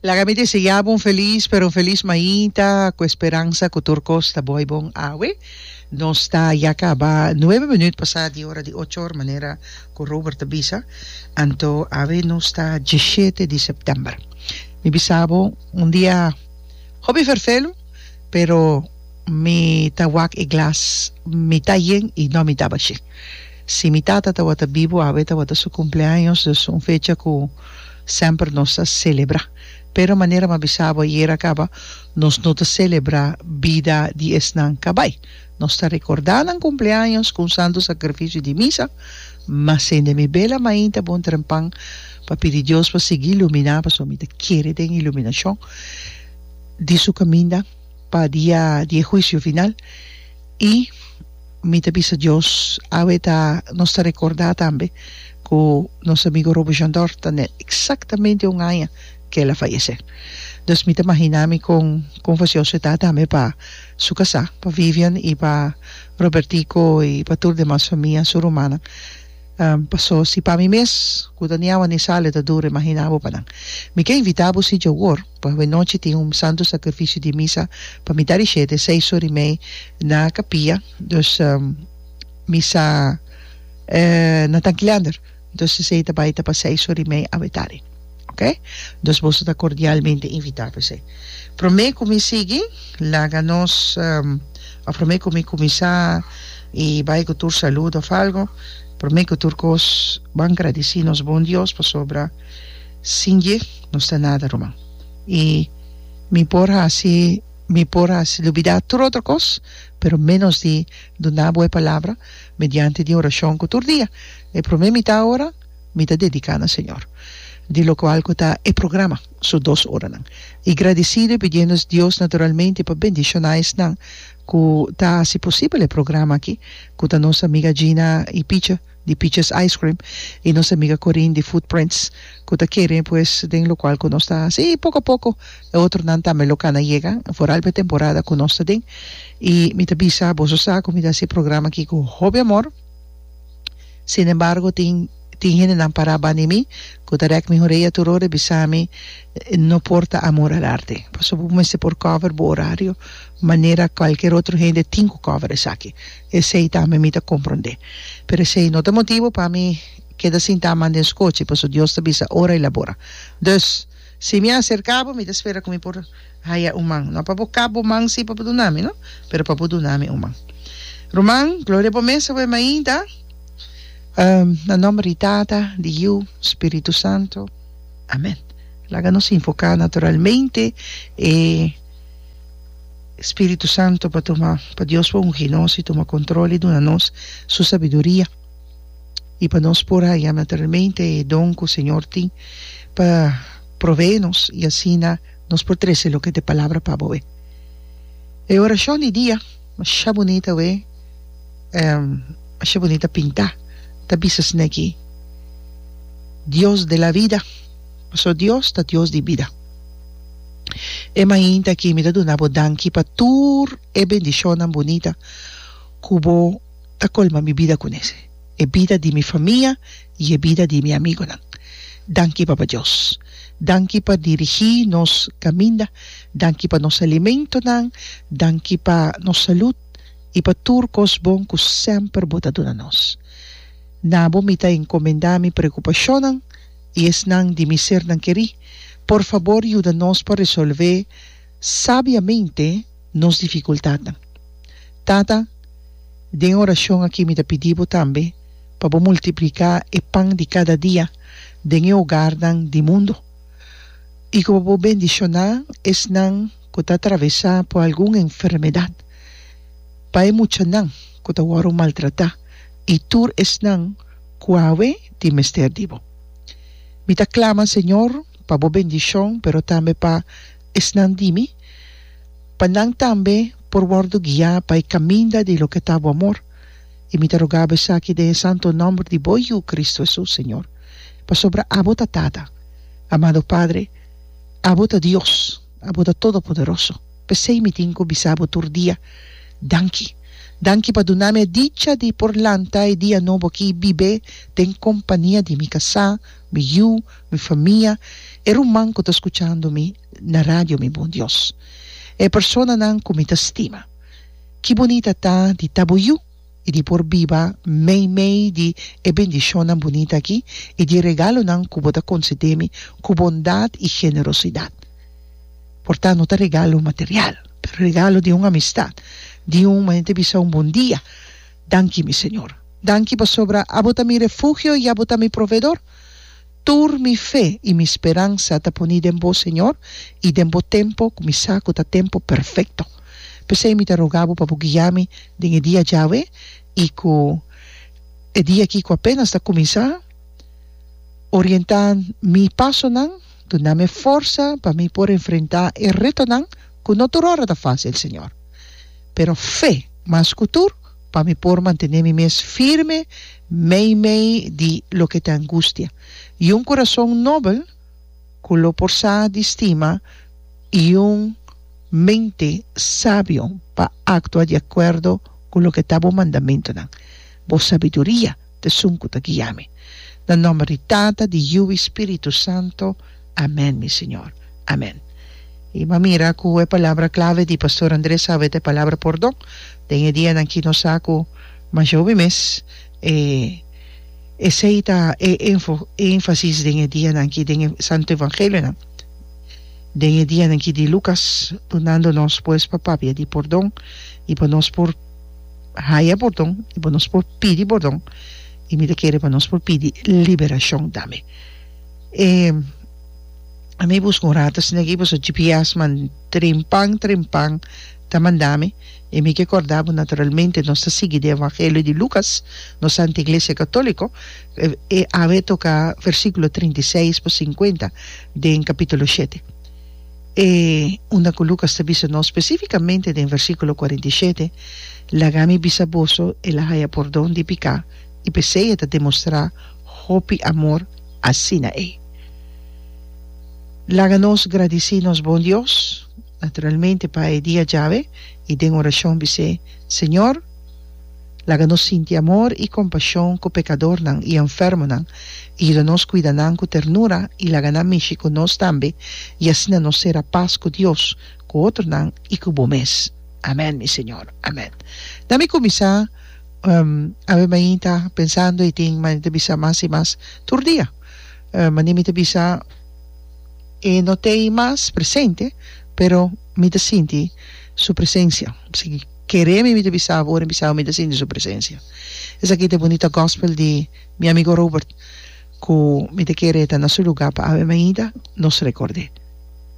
Laga mi deseá bo un felis, pero un felis mainta, ku e speransa ku tur kos ta boi bon awe. Nos ta ya kaba nuebe minüt pasá di ora di ocho or, manera ku Robert a bisa. Anto awe nos ta diesshete di sèptèmber. Mi bisa bo un dia hopi ferfelu, pero mi ta wak e glas mitá yen i nò mitá bashí. Si mi tata tawata bibu awe tawata su cumpleaños, dus un fecha cu semper nos ta celebra. Pero manera m'a bisa bo ayer a caba, nos no ta celebra bida di esnan cabai. Nos ta recorda nan cumpleaños cu un santo sacrificio di misa, ma sende mi bela mainta bon trempan pa pidi Dios pa sigui lumina, pasobra mi ta kere den iluminacion di su caminda pa dia di e huicio final y. Mi ta bisa Dios, awe ta nos ta recorda tambe cu nos amigo Robo Jandor ta na exactamente un aña que el a fayece. Dus mi ta magina mi con con facioso e ta tambe pa su casa, pa Vivian y pa Robertico y pa tur demas famia, su rumannan. Paso si pa mi mes cu ta ni awa ni sali ta duro imagina bo pa nan. Mi ke invita bo si dje awor. Por hoi nochi tin un santo sakrifisio di misa pa mi dari shete seis sur i mei na kapia, dus misa na tanki leander, entonces esei ta bai ta pa seis sur i mei awe tardi, ok? Entonces boso ta kordialmente invitá pa esei. Promé ku mi sigui, laga nos òf promé ku mi kuminsá i bai ku tur salud òf algu, promé ku tur kos ban gradisí nos bon Dios pasobra, Sin dje nos ta nada ruman y mi por haci mi por haci lubida tur otro cos pero menos di duna bo e palabra mediante di oracion cu tur dia e prome mita ora mi ta dedica na Señor di locual cu ta e programa su dos oranan y gradicido y pidiendo Dios naturalmente pa bendiciona esnan cu ta haci posibel e programa aki cu ta nos amiga Gina y Pichi. di Peaches Ice Cream y nos amiga Corine di Footprints cu ta kere pues den locual cu nos ta haci y poco a poco e otronan tambe lo cana yega foral pa e temporada cu nos ta den y mi ta bisa boso sa cu mi ta haci e programa aki cu hopi amor sin embargo tin tin hendenan para bani mi cu ta rek mi horea tur ora y bisa mi no por ta amor al arte pasobra bo mester por cover bo horario manera cualkier otro hende tin cu cover esaki. Esei tambe mi ta komprondé. Pero esei no ta motibu pa mi keda sintá man den skochi, paso Dios ta bisa ora i la bora. Dus, si mi a aserká bo, mi ta spera ku mi por haya un man, no pa bo kap bo man si pa bo duna mi, no, pero pa bo duna mi un man. Ruman, gloria pa mes awe mainta. Na nòmber di Tata, di Yiu, Spiritu Santu. Amèn. Laga nos invoká naturalmente e. Spiritu Santo pa tuma pa Dios pa ungi nos y tuma control y duna nos su sabiduria y pa nos por haya naturalmente e don cu Señor tin pa provee nos y asina nos por trece loke ta e palabra pa boe. E oracion di dia masha bunit awe masha bunit a pinta ta bisa asina aki Dios de la vida pasobra Dios ta Dios di bida. E mainta aki mi ta duna bo danki pa tur e bendishonnan bunita ku bo ta kolma mi bida ku nes, e bida di mi famia i e bida di mi amigunan. Danki Papa Dios. Danki pa dirigí nos kaminda, danki pa nos alimentonan, danki pa nos salut i pa tur kos bon ku semper bo ta duna nos. Na bo mi ta enkomendá mi preokupashonnan. i esnan di mi sernan kerí, por fabor yuda nos pa resolvé sabiamente nos difikultatnan. Tata, den e orashon akí mi ta pidí Bo tambe pa Bo multipliká e pan di kada dia den e ogarnan di mundu i ku pa Bo bendishoná esnan ku ta atravesá por algun enfermedat, pa e muchanan ku ta wòru maltratá i tur esnan cu awe tin mester di bo. Mi ta clama, Señor, pa bo bendicion, pero tambe pa esnan di mi, pa nan tambe por wordo guia pa e caminda di loke ta bo amor. Y mi ta rogabo esaki den e santo nomber di bo Yu, Cristo Jesús, Señor, pasobra abo ta Tata. Amado Padre, abo ta Dios, abo ta Todopoderoso. P'esei mi tin ku bisa bo tur dia, Danki. Danki pa duna mi e dicha di por lanta e dia nobo aki i bib'é den kompania di mi kasá, mi yu, mi famia, e ruman ku ta skuchando mi na radio, mi bon Dios. E personanan ku mi ta stima. Ki bunita ta di ta bo yu! i di por biba meimei di e bendishonnan bunita akí i di e regalonan ku bo ta konsedé mi ku bondat i generosidat. Por ta no ta regalo material, pero regalo di un amistat, di un manera ta bisa un bon dia, Danki mi Señor. Danki pasobra abo ta mi refugio i abo ta mi proveedor. Tur mi fe i mi speransa ta poni den bo, Señor, i den bo tempu ku mi sa ku ta tempu perfekto. P'esei mi ta roga bo pa bo guia mi den e dia djawe i ku e dia aki ku apenas ta kuminsá. Orientá mi pasonan, dunami e forsa pa mi por enfrentá e retonan ku no tur ora ta fásil, Señor, pero fe mas ku tur. pa mi por mantené mi mes firme meimei di loke t'e angustia, i un kurason nobel ku lo por sa di stima i un mente sabio pa aktua di akuerdo ku loke ta bo mandamentunan, bo sabiduria. Esun cu ta guia mi. Na nomber di Tata, di Yu i Spiritu Santo. Amen, mi Señor. Amen. I bo a mira cu e palabra clave di Pastor André Saue ta e palabra pordon. Den e dianan aki nos sa cu masha hopi mes e esey ta e enfo e enfasis den e dianan aki den e Santo Evangelionan. Den e dianan aki di Lucas, dunando nos pues pa papia di pordon i pa nos por. haya bordon y bo nos por pidi bordon y mi ta kere pa nos por pidi liberacion tambe e ami busca un rato asina aki pasobra GPS man trempan trempan ta manda mi y mi ke corda bo naturalmente nos ta sigui di evangelio di Lucas nos ta anti iglesia catolico e awe toca versiculo treinta y seis pa cincuenta den capitulo shete E unda ku Lukas ta bisa nos spesífikamente den versíkulo kuarenta i shete, Laga mi bisa boso, el a haya pordon di piká, i p'esei e ta demostrá hopi amor asina ei. Laga nos gradisí nos bon Dios, naturalmente pa e dia djawe i den orashon bis'é, Señor, Laga nos sinti amor i kompashon ku pekadornan i enfermonan, i yuda nos kuida nan ku ternura i laga nan mishi ku nos tambe, i asina nos sera pas ku Dios, ku otronan i ku bo mes. Amèn, mi Señor. Amèn. Na mi kuminsá, awe mañana ta pensando i tin mañana ta bisa mas i mas tur dia. Mañana mi ta bisa e no t'ei mas presente, pero mi ta sinti su presensia. Keré mi mi ta bisa bo ora mi bisa bo mi ta sinti su presencia. Esaki ta bonita gospel di mi amigo Robert cu mi ta kere ta na su lugar pa Ave Maida nos recordé.